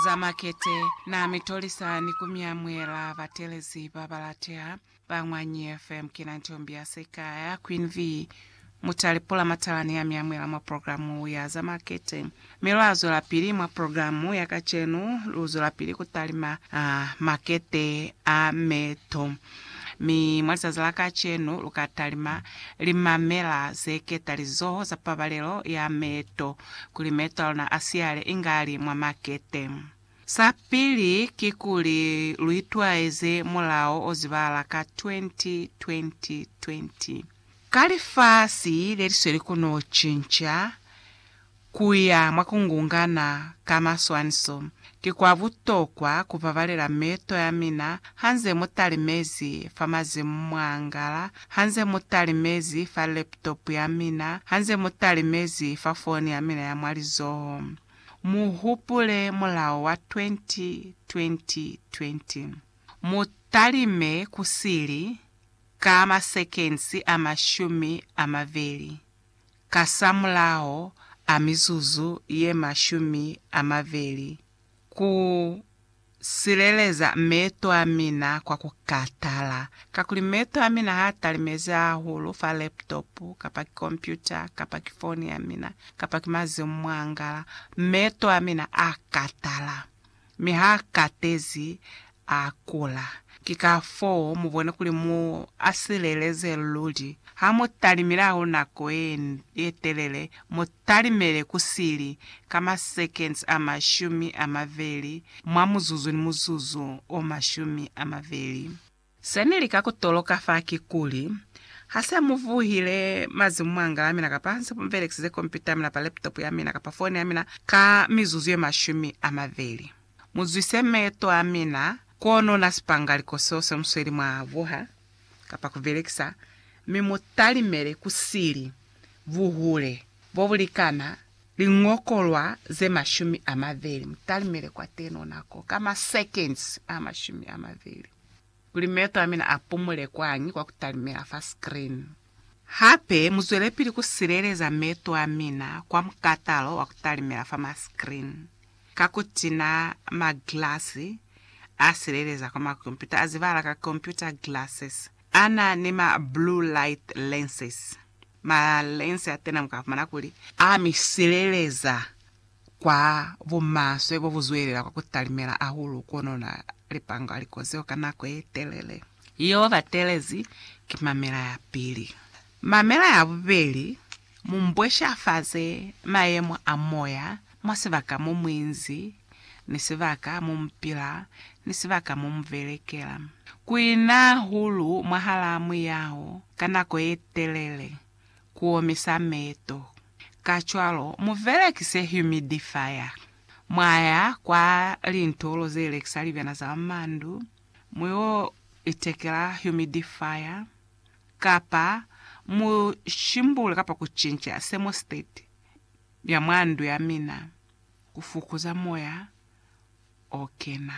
Za makete na mi tolisa ni ku mi amuhela batelezi ba ba lateha. Ba Ñwanyi FM ki na ntombi ya se ka ya Queen Vee Mutali Pula Matalani ya mi amuhela mwa programu ya za makete. Mi lwa zwelapili mwa programu ya kacenu, lu zwelapili ku talima makete a meto. Mi mwa lizazi la kacenu lu ka talima limamela ze keta lizoho za pabalelo ya meeto kuli meeto a luna a siyale inga li mwa makete. Sa pili kikuli lu itwaeze mulao o zibahala ka 20, 20, 20. Ka lifasi le li sweli ku no cinca, Kuya mwa kungungana ka maswaniso ki kwa butokwa kubabalela meeto yamina hanze mutalimezi fa mazimu mwaangala, hanze mutalimezi fa laptop yamina, hanze mutalimezi fa foni yamina ya mwa lizoho. Muhupule mulao wa 20-20-20. Mutalime kusili ka masekensi amashumi amabeli. kasamulaho a mizuzu ye mashumi a mabeli, ku sileleza meeto a mina kwa ku katala. Kakuli meeto a mina ha a talimezi hahulu fa laptop, kapa ki kompyuta, kapa ki foni ya mina, kapa ki mazimu mwa ngala, meeto a mina a katala. Mi ha katezi a kula. Ki ka foo mu bona kuli mu a sileleze luli. Ha mu talimilaho nako ye telele, mu talimele ku sili ka ma seconds a mashumi a maveli mwa muzuzu ni muzuzu o mashumi a maveli. Se ni lika ku toloka fa ki kuli, ha se mu vuhile mazimu mwa ngala ya mina kapa ha nse mu belekisize kompyuta ya mina kapa laptop ya mina kapa fone ya mina ka mizuzu ye mashumi a mabeli, mu zwise meeto a mina kono na sipangaliko seo se mu sweli mwa vuha kapa ku belekisa, mi mu talimele ku sili buhule bo bu likana Lingokolwa ze mashumi a mabeli. Mu talimele kwa teno nako ka ma seconds a mashumi a mabeli, kuli meto a mina a pumule kwani kwa ku talimela fa screen. Hape, mu zwelepili ku sileleza meto a mina kwa mukatalo wa ku talimela fa ma screen, ka ku tina ma glasi a sileleza kwa ma kompyuta a zibahala ka computer glasses, a na ni ma blue light lenses. Malense a tena mu ka fumana kuli a mi sileleza kwa bumaswe bo bu zwelela kwa ku talimela hahulu kono na lipanga likozi lwa nako ye telele. Yo ba telezi ki mamela ya pili. Mamela ya bubeli mu mbweshafaze mayemo a moya Mwa sibaka mo muinzi, ni sibaka mo mupila, ni sibaka mo mubelekela. Kuina hahulu mwahalaa muyaho ka nako yetelele kuomisa meeto. Kacwalo, mubelekise humidifier. Mwaya kwa lintolo zelekisa libyana za mandu, muyo itekela humidifier, kapa mushimbule kapa kucinca thermostat. Mya mwa ndu ya mina, ku fukuza moya o kena.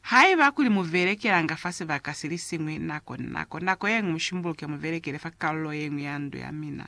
Haiba kuli mu velekelanga fa sibaka si li siñwi nako ni nako, nako ye ñwi mu shimbuluke mu velekele fa kalulo ye ñwi ya ndu ya mina.